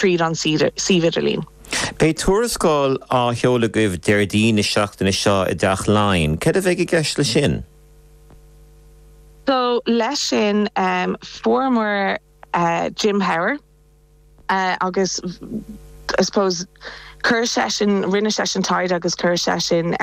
tríd an suíomh idirlín. Beidh tuarascáil á sheoladh agaibh Déardaoin na seachtaine seo i dTeach Laighean. Céard a bheidh i gceist leis sin? So leis sin fuaireamar Jim Power agus I suppose chuir seisean, rinne seisean taighde agus chuir seisean,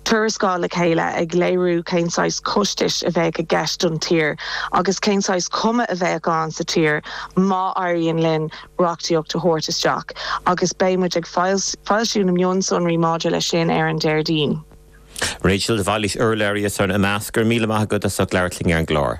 tuarascáil le chéile ag léiriú cén saghas costais a bheadh i gceist don tír agus cén saghas cuma a bheadh ann sa tír má éiríonn linn reachtaíocht a thabhairt isteach agus beidh muid ag foilsiú na mionsonraí maidir leis sin ar an Déardaoin. Rachel, de Bhailís, urlabhraí ar son Imeasc. Go raibh míle maith agat as ucht labhairt linn ar an gclár.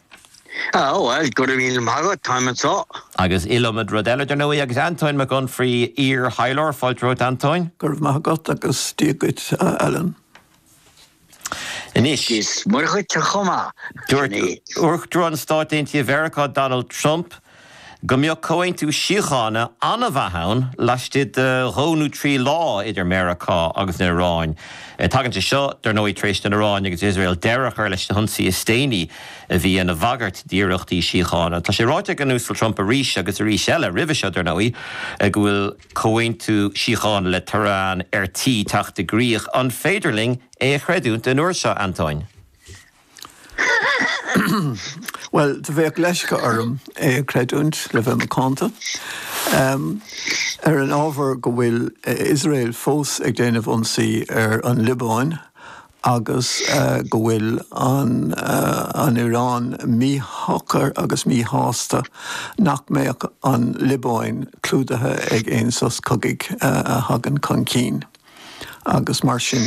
Oh, well, go raibh míle maith agat, táim anseo. Agus iliomad rud eile, dar ndóigh, agus Antóin Mac Unfraidh, iar-thaidhleoir. Fáilte romhat, Antóin. Go raibh maith agat agus Dia duit, a Alan. Anois. Is Muire dhuit chomh maith, Johnny. Dúirt Uachtarán Stáit Aontaithe Mheiriceá Donald Trump. go mbeadh comhaontú síochána an-mhaith ann laistigh de dhó nó trí lá idir Meiriceá agus an Iaráin. Tagann sé seo, dar ndóigh, tar éis don Iaráin agus Iosrael deireadh a chur leis na hionsaí is déanaí a bhí ina bhagairt d'iarrachtaí síochána. Tá sé ráite ag an Uasal Trump arís agus arís eile roimhe seo, dar ndóigh, go bhfuil comhaontú síochána le Tehran ar tí teacht i gcrích. An féidir linn é a chreidiúint an uair seo, Antóin? Bhuel, do bheadh leisce orm é a chreidiúint, le bheith macánta. Ar an ábhar go bhfuil Iosrael fós ag déanamh ionsaí ar an Liobáin agus go bhfuil an Iráin míshocair agus míshásta nach mbeadh an Liobáin clúdaithe ag aon sos cogaidh a thagann chun cinn. agus mar sin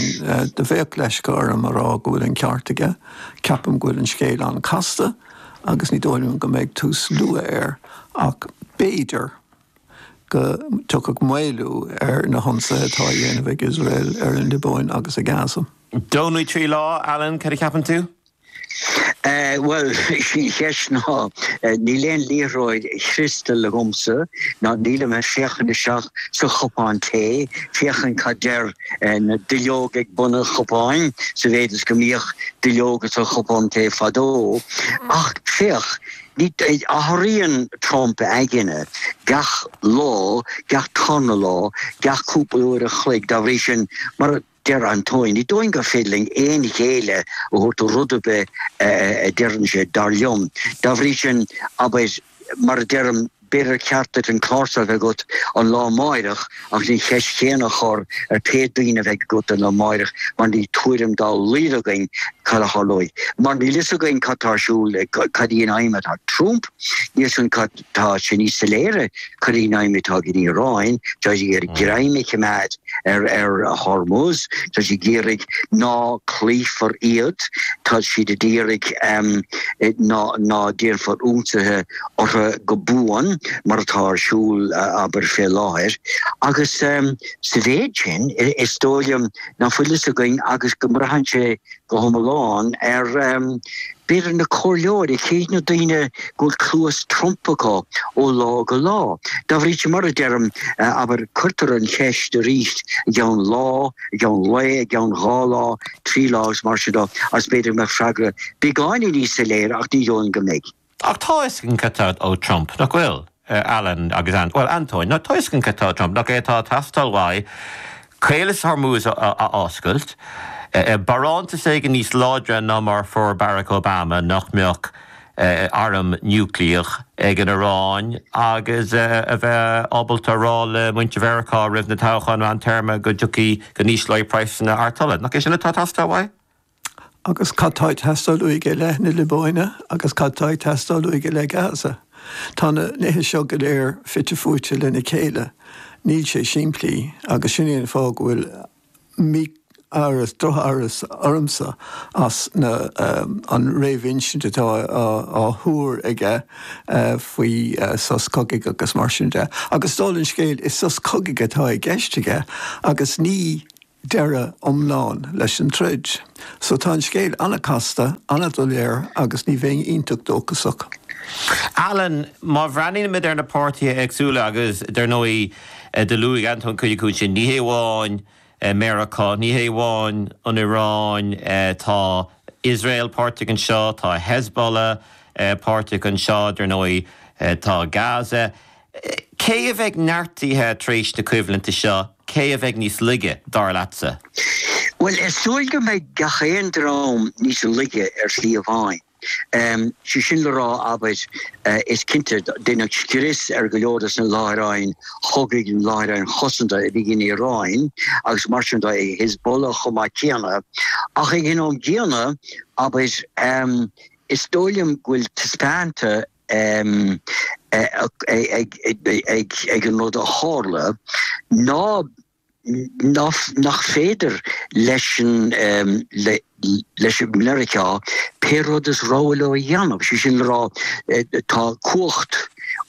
de bheadh leisce orm a rá go bhfuil an ceart aige. Ceapaim go bhfuil an scéal an-casta agus ní dóigh liom go mbeidh tús luath air ach b'fhéidir go dtiocfadh maolú ar na hionsaithe atá á dhéanamh ag Iosrael ar an Liobáin agus i Gaza. Dó nó trí lá, Alan, cad a cheapann tú? Bhuel, sé an cheist ná níl aon liathróid chriostail agamsa, ná nílim ag féachaint isteach sa chupán tae féachaint cad deir na duilleoga ag bun an chupáin, sa mhéid is go mbíodh duilleoga sa chupán tae fadó. Ach féach, athraíonn Trump a aigne gach lá, gach tarna lá, gach cúpla uair an chloig, dá bhrí sin, mar a. Deir Antóin, ní dóigh liom gur féidir linn aon ghéilleadh a thabhairt do rud ar bith a deireann sé, dar liom. Dá bhrí sin, abair, mar a deirim, b'fhéidir gur cheart duit an clár so a bheith agat an lá amáireach agus an cheist chéanna a chur ar pé daoine a bheidh agat an lá amáireach mar níl tuairim dá laghad againn cad a tharlóidh. Mar níl fhios againn cad atá ar siúl, cad í an aidhm atá ag Trump, níl fhios againn cad. Tá sé níos soiléire cad í an aidhm atá ag an Iaráin, tá sí ag iarraidh greim a chimeád ar Hormuz, tá sí ag iarraidh ná cloífear iad, tá siad ag iarraidh ná déanfar ionsaithe orthu go buan, mar atá ar siúl, abair, fé láthair. Agus sa mhéid sin, is dóigh liom ná fuil a fhios againn agus go mbraitheann sé go hiomlán ar b'fhéidir na comhairleoirí, cé hiad na daoine go bhfuil cluas Trump acu ó lá go lá. Dá bhrí sin, mar a deirim, abair, cuirtear an cheist arís i gceann lá, i gceann lae, i gceann dhá lá, trí lá agus mar sin de, agus b'fhéidir go mbeadh freagra beagáinín níos soiléire, ach ní dóigh liom go mbeidh. Ach tá a fhios againn céard atá ó Trump, nach bhfuil? Alan agus, a bhuel, Antóin, tá a fhios againn céard atá ó Trump, nach é atá ag teastáil uaidh Caolas Hormuz a oscailt, barántas éigin níos láidre ná mar a fuair Barack Obama, nach mbeadh airm núicléach ag an Iaráin, agus a bheith ábalta a rá le muintir Mheiriceá roimh na toghcháin meántéarma go dtiocfaidh, go n-ísleoidh praghsanna artola? Nach é sin atá ag teastáil uaidh? Agus cad tá ag teastáil uaidh i leith na Liobáine agus cad tá ag teastáil uaidh i leith Gaza? Tá na nithe seo go léir fite fuaite lena chéile. Níl sé simplí. Agus sin é an fáth go bhfuil mí-amhras, drochamhras ormsa as na, an réamhinsint atá á thabhairt aige faoi sos cogaidh agus mar sin de. Agus is dóigh liom an scéal, is sos cogaidh atá i gceist aige agus ní deireadh iomlán leis an troid. So tá an scéal an-casta, an-doiléir agus ní bheinn iontach dóchasach. Alan, má bhreathnaímid ar na páirtithe éagsúla agus, dar ndóigh, do luaigh Antóin cuid acu sin, ní hamháin Meiriceá, ní hamháin an Iaráin, tá Iosrael páirteach anseo, tá Hezbollah páirteach anseo, dar ndóigh, tá Gaza. Cé a bheidh neartaithe tar éis na coimhlinte seo? Cé a bheidh níos laige, dar leatsa? Bhuel, is dóigh go mbeidh gach aon dream níos laige ar shlí amháin. Sé sin le rá, abair, is cinnte, deineadh scrios ar go leor de na láithreáin chogaidh, na láithreáin chosanta a bhí ag an Iaráin agus mar sin de ag Hezbollah chomh maith céanna. Ach ag an am gcéanna, abair, is dóigh liom go bhfuil taispeánta ag an rud a tharla ná nach féidir leis an, leis Meiriceá pé rud is rogha leo a dhéanamh, sé sin le rá, tá cumhacht,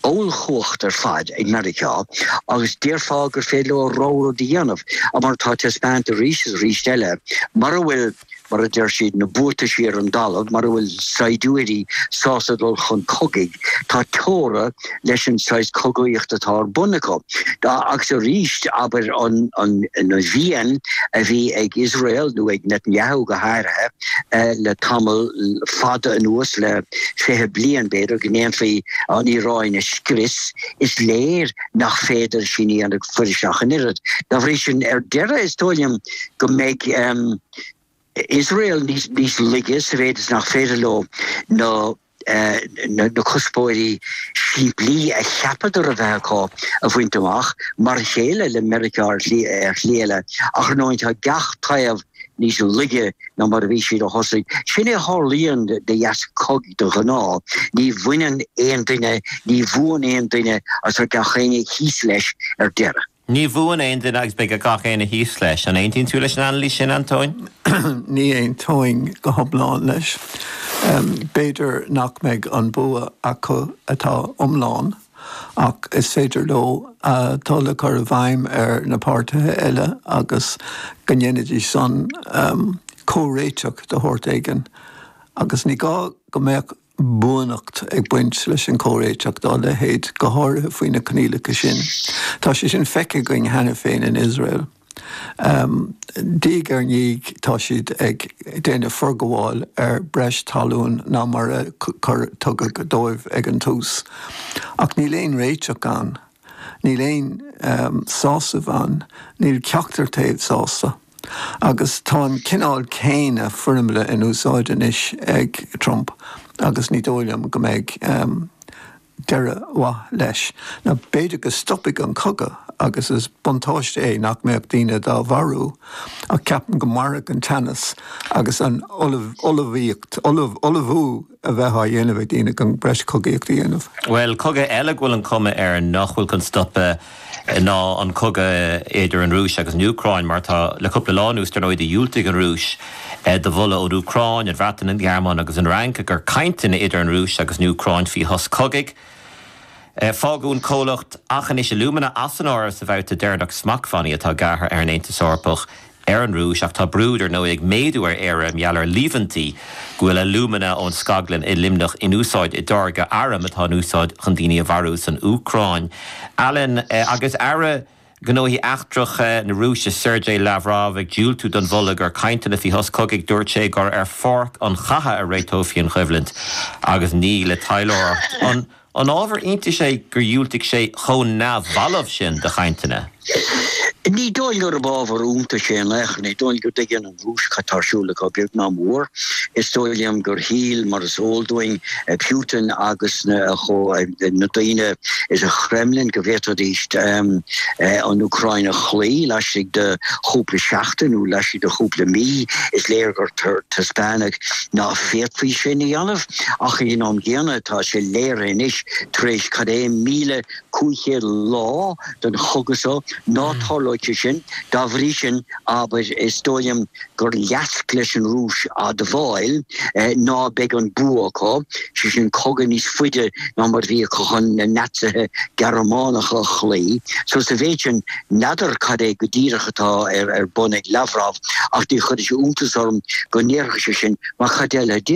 ollchumhacht ar fad ag Meiriceá agus déarfá gur féidir leo rogha rud a dhéanamh, mar atá taispeánta arís is arís eile, mura bhfuil. mar a deir siad, na buataisí ar an dtalamh mar a bhfuil saighdiúirí sásta dul chun cogaidh, tá teora leis an saghas cogaíocht atá ar bun acu. Agus arís, abair, an mhian a bhí ag Iosrael, nó ag Netanyahu go háirithe, le tamall fada anuas, le fiche bliain b'fhéidir, go ndéanfaí an Iaráin a scrios, is léir nach féidir sin a dhéanamh go fuiriste an oiread. Dá bhrí sin, ar deireadh, is dóigh liom, go mbeidh um, Iosrael níos, níos laige sa mhéid is nach féidir leo na Eh, na cuspóirí simplí a cheapadar a bheith acu a bhaint amach mar chéile le Meiriceá ar shlí eile ach ar ndóigh tá gach taobh níos laige ná mar a bhí siad i dtosach. Sin é a tharlaíonn de dheasca cogaidh de ghnáth, ní bhuann aon duine ní bhuann aon duine agus gach éinne thíos leis ar deireadh. Ní bhuann aon duine agus beidh gach éinne thíos leis. An aontaíonn tú leis an anailís sin, Antóin? Ní aontaím go hiomlán leis. B'fhéidir nach mbeidh an bua acu atá iomlán ach is féidir leo tuilleadh a chur i bhfeidhm ar na páirtithe eile agus go ndéanfaidís sin comhréiteach de shórt éigin agus ní gá go mbeadh buanacht ag baint leis an gcomhréiteach dá leithéid, go háirithe faoi na coinníollacha sin. Tá sé sin feicthe againn cheana féin in Iosrael. Diaidh ar ndiaidh tá siad ag déanamh forghabháil ar bhreis talún ná mar a tugadh dóibh ag an tús. Ach níl aon réiteach ann. Níl aon sásamh ann. Níl ceachtar taobh sásta. Agus tá an cineál céanna foirmle in úsáid anois ag Trump agus ní dóigh liom go mbeidh deireadh mhaith leis. Nó b'fhéidir go stopfaidh an cogadh agus is buntáiste é nach mbeadh daoine dá marú ach ceapaim go mairfidh an teannas agus an ullmhaíocht, ullmhú, a bheith á dhéanamh ag daoine chun breis cogaíocht a dhéanamh. Bhuel, cogadh eile go bhfuil an chuma air nach bhfuil chun stoptha ná an cogadh idir an Rúis agus an Úcráin, mar atá le cúpla lá anuas. Dar ndóigh, dhiúltaigh an Rúis do mholadh ón Úcráin, an Bhreatain, an Ghearmáin agus an Fhrainc i gcomhair cainteanna idir an Rúis agus an Úcráin faoi shos cogaidh. Fágadh an comhlacht Aughinish Alumina as an áireamh sa bhabhta deireanach smachtbhannaí atá gearrtha ag an Aontas Eorpach. ar an Rúis ach tá brú, dar ndóigh, ag méadú ar Éire i ngeall ar líomhaintí go bhfuil alúmana ón scaglann i Luimneach in úsáid i dtáirgeadh arm atá in úsáid chun daoine a mharú san Úcráin. Alan, Agus Aire Gnóthaí Eachtracha na Rúise, Sergei Lavrov, ag diúltú don mholadh i gcomhair cainteanna faoi shos cogaidh, dúirt sé gur ar pháirc an chatha a réiteofaí an choimhlint agus ní le taidhleoireacht. An ábhar iontais é gur dhiúltaigh sé chomh neamhbhalbh sin do chainteanna? Ní dóigh liom gurb ábhar iontais é in aon chor. Ní dóigh liom go dtuigeann an Rúis cad tá ar siúl acu, beag ná mór. Is dóigh liom gur shíl, mar is eol dúinn, Putin agus na daoine sa Khremlin go bhféadfaidís an Úcráin a chloí laistigh de chúpla seachtain nó laistigh de chúpla mí. Is léir gur taispeánadh ná féadfaí sin a dhéanamh. ach ag an am gcéanna tá sé léirithe anois tar éis cad é 1500 lá den chogadh so ná tarlóidh sé sin. Dá bhrí sin, abair, is dóigh liom gur leasc leis an Rúis admháil ná beidh an bua acu, sé sin cogadh níos faide ná mar a bhí acu chun na Naitsithe Gearmánacha a chloí. So sa mhéid sin, n'fheadar cad é go díreach atá ar bun ag Lavrov ach ní chuireann sé iontas orm go ndéarfadh sé sin, mar cad eile a déarfadh?